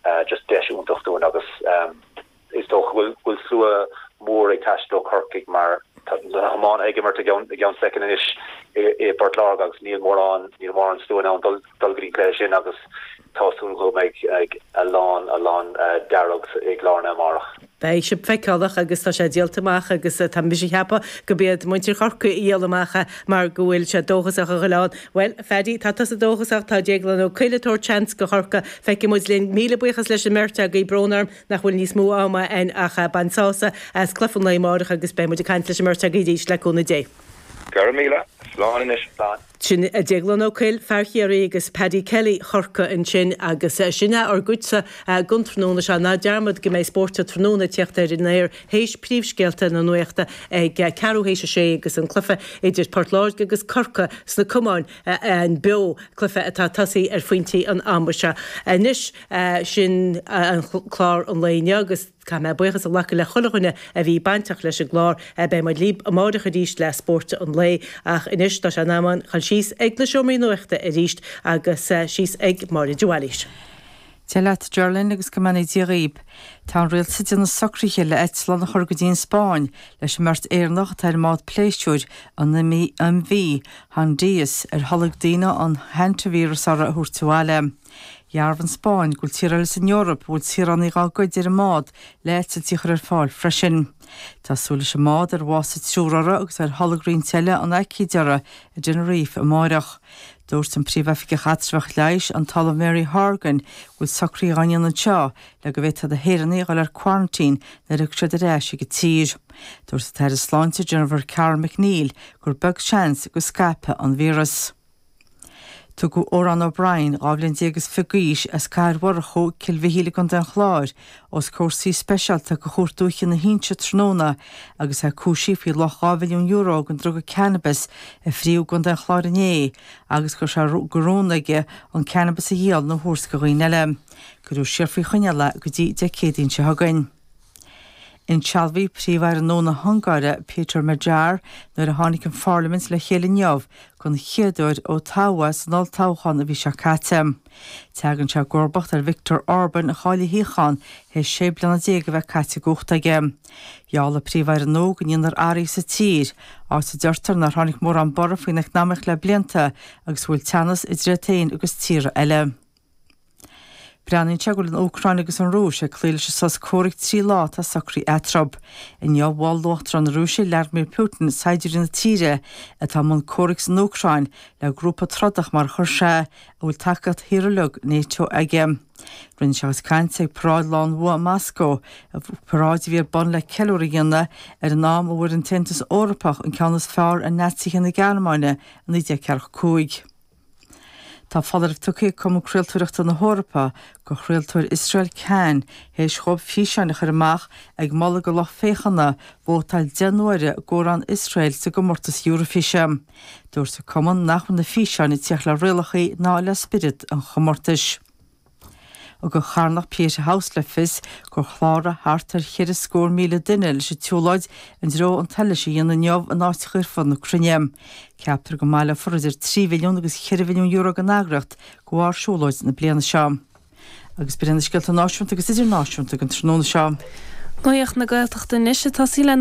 Ahh just deis iontach dúinn agus is dócha go bhfuil slua mór ag taisteal ó Chorcaigh mar tá na hiománaithe ag imirt i gceann soicind anois i bPort Láirge agus níl mórán níl mórán slua in ann dul dul go dtí an cluiche sin agus tá súil agam go mbeidh a lán a lán dearg i gCill Airne amárach. Beidh sé feiceálach agus tá sé díolta amach agus tá mise a cheapadh gurb iad muintir Chorcaí a dhíol amach é mar go bhfuil siad dóchasach a ghoil ann. Bhuel, a Phaddy, tá tusa dóchasach, tá Déaglan Ó Cuill ag tabhairt seans go Chorcaigh, feicfidh muid linn. Míle buíochas leis an mbeirt agaibh, brón orm nach bhfuil níos mó ama a'inn ach bain sásamh as cluife an lae amárach agus beidh muid ag caint leis an mbeirt agaibh arís le cúnamh Dé. Go raibh míle, slán anois. Sin é Déaglán Ó Cuill, fear Chiarraí, agus Paddy Kelly, Chorcaigh, ansin agus sin é ár gcuidsa gon tráthnóna seo. Ná dearmad go mbeidh Spórt tráthnóna ag teacht ar an aer théis príomhscéalta na nuachta ag ceathrú théis a sé agus an cluiche idir Port Láirge agus Corcaigh sna cumáin ann beo, cluiche atá tosaí ar phointí an ama seo. Anois sin é clár an lae inniu agus. Caithfidh mé buíochas a ghlacadh le chuile dhuine a bhí bainteach leis an gclár. Beidh muid libh amáireach arís le Spórt an Lae ach anois tá sé in am a'inn a dhul síos ag an seomra nuachta arís agus síos ag Máire de Bhailís. Dia leat Gearóidín agus go mbeannaí Dia dhaoib. Tá an rialtas ag déanamh socruithe le eitleán a chur go dtí an Spáinn leis an mbeirt Éireannach atá ar an mbád pléisiúir an MV Hondius ar tholg daoine an hantavirus uirthi a thabhairt abhaile. Dhearbhaigh an Spáinn go bhfuil tíortha eile san Eoraip a bhfuil saoránaigh dá gcuid ar an mbád le heitiltí a chur ar fáil freisin. Tá súil leis an mbád, ar bhásaigh triúr uirthi agus ar tholg roinnt eile an aicíd uirthi, i dTenerife amárach. Dúirt an Príomhoifigeach Eatramhach Leighis, an tOllamh Mary Horgan, go bhfuil socruithe á ndéanamh anseo le go bhféadfadh na hÉireannaigh a dhul ar quarantine nuair a thiocfaidh siad ar ais chuig an tír. Dúirt an tAire Sláinte Jennifer Carroll MacNeill gur beag seans go scaipfidh an víreas. Tugadh Odhrán O'Brien, 12 bhliain is fiche d'aois, as Cathair Mhurchú, Cill Mhichíl i gContae an Chláir, os comhair suí speisialta de Chúirt Dúiche na hInse tráthnóna agus é cúisí faoi luach €2 mhilliún den druga cannabis a frítheadh i gContae an Chláir inné agus go raibh sé de rún aige an cannabis a dhíol nó a thabhairt do dhaoine eile. Cuireadh siar faoi choinneáil é go dtí Dé Céadaoin seo chugainn. Insealbhaíodh Príomh-Aire nua na hUngáire, Péter Magyar, nuair a tháinig an pharlaimint le chéile inniu den chéad uair ó toghadh é san olltoghchán an mhí seo caite. Teagann sé i gcomharbacht ar Viktor Orban a chaill a shuíochán théis sé bliana déag a bheith caite i gcumhacht aige. Gheall an Príomh-Aire nua go ndéanfar athruithe sa tír, áit a deirtear nár tháinig mórán borradh faoin eacnamaíocht le blianta agus a bhfuil teannas idir iad féin agus tíortha eile. Breathnaíonn sé go bhfuil an Úcráin agus an Rúis ag cloí leis an sos comhraic trí lá atá socraithe eatarthu. Inniu mhol Uachtarán na Rúise Vladimir Putin saighdiúirí na tíre atá i mbun comhraic san Úcráin le grúpa trodach mar a chuir sé, a bhfuil tacaíocht thíortha uilig Nato aige. Rinne sé a chuid cainte ag paráid Lá an Bhua i Moscó, paráid a bhí ar bun le ceiliúradh a dhéanamh ar an am a bhfuair an tAontas Eorpach an ceann is fearr ar Naitsithe na Gearmáine i 1945. Tá foláireamh tugtha ag Cumann Craoltóireachta na hEorpa do chraoltóir Iosrael Kan théis dhóibh físeáin a chur amach ag moladh go lucht féachana vótáil deich n-uaire d'amhrán Iosrael sa gcomórtas Eoraifíse. Dúirt an cumann nach raibh na físeáin ag teacht le rialacha ná le spiorad an chomórtais. Thug an charthanacht Pieta House le fios gur chláraigh thart ar cheithre scór míle duine leis an tsiúlóid i ndtreo an tsolais a dhéanamh inniu in áiteacha ar fud na cruinne. Ceaptar go mbaileofar idir trí mhilliún agus cheithre mhilliún euro ag an eagraíocht de bharr siúlóid na bliana seo. Agus b'in iad na scéalta náisiúnta agus idirnáisiúnta againn tráthnóna seo. Nuacht na Gaeltachta anois ag tosí le.